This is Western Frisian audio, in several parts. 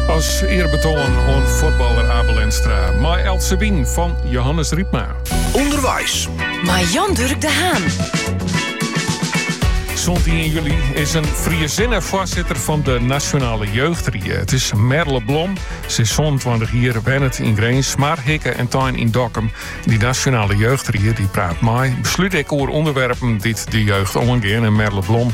As earbetoan oan fuotballer Abe Lenstra. Mei Else Wien fan Johannes Rypma. Underweis. Mei Jan Durk de Haan. Sûnt 1 july is in Friezinne foarsitter fan de Nasjonale Jeugdried. It is Merle Blom. Se is 27 jier, wennet yn Grins, mar hikke en tein yn Dokkum. Dy Nasjonale Jeugdried dy praat mei, beslút ek oer ûnderwerpen dy't de jeugd oangean. En Merle Blom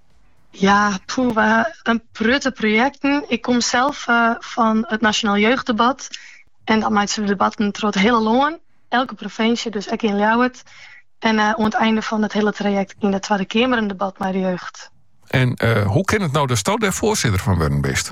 Ja, poeh, we ha in protte projekten. Ik kom sels fan it Nasjonaal Jeugddebat en dan meitsje we debatten troch it hiele lân, elke provinsje, dus ek yn Ljouwert. En oan it einde fan it hiele trajekt yn de Twadde Keamer in debat mei de jeugd. En hoe kin it no datsto dêr foarsitter fan wurden bist?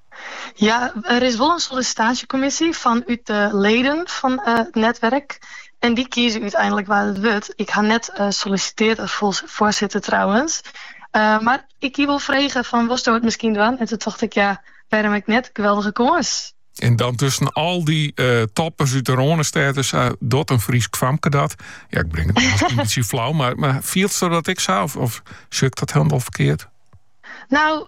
Ja, der is wol in sollisitaasjekommisje fan út de leden fan it netwerk en dy kieze úteinlik wa't it wurdt. Ik ha net sollisiteard as foarsitter trouwens, mar ik hie wol frege fan wolsto it miskien dwaan en toen tocht ik ja, wêrom ek net, geweldige kâns. En dan tusken al dy eh, toppers út de Rânestêd sei eh, dat in Frysk famke dat. Ja, ik bring it miskien in bytsje flau, mar, mar fielsto dat ek sa? Of, of sjoch ik dat hielendal ferkeard? No,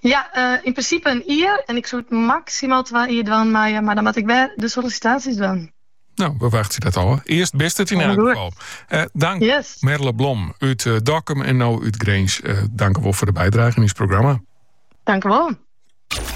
Ja, yn prinsipe ien jier. En ik soe it maksimaal twa jier dwaan meie, mar dan moat ik wer de sollisitaasjes dwaan. No, we wachtsje dat ôf. Earst bist it yn elk gefal. Eh, tankje. Merle Blom út uh, Dokkum en no út Grins. Uh, tankewol foar de bydrage yn ús programma. Tankewol.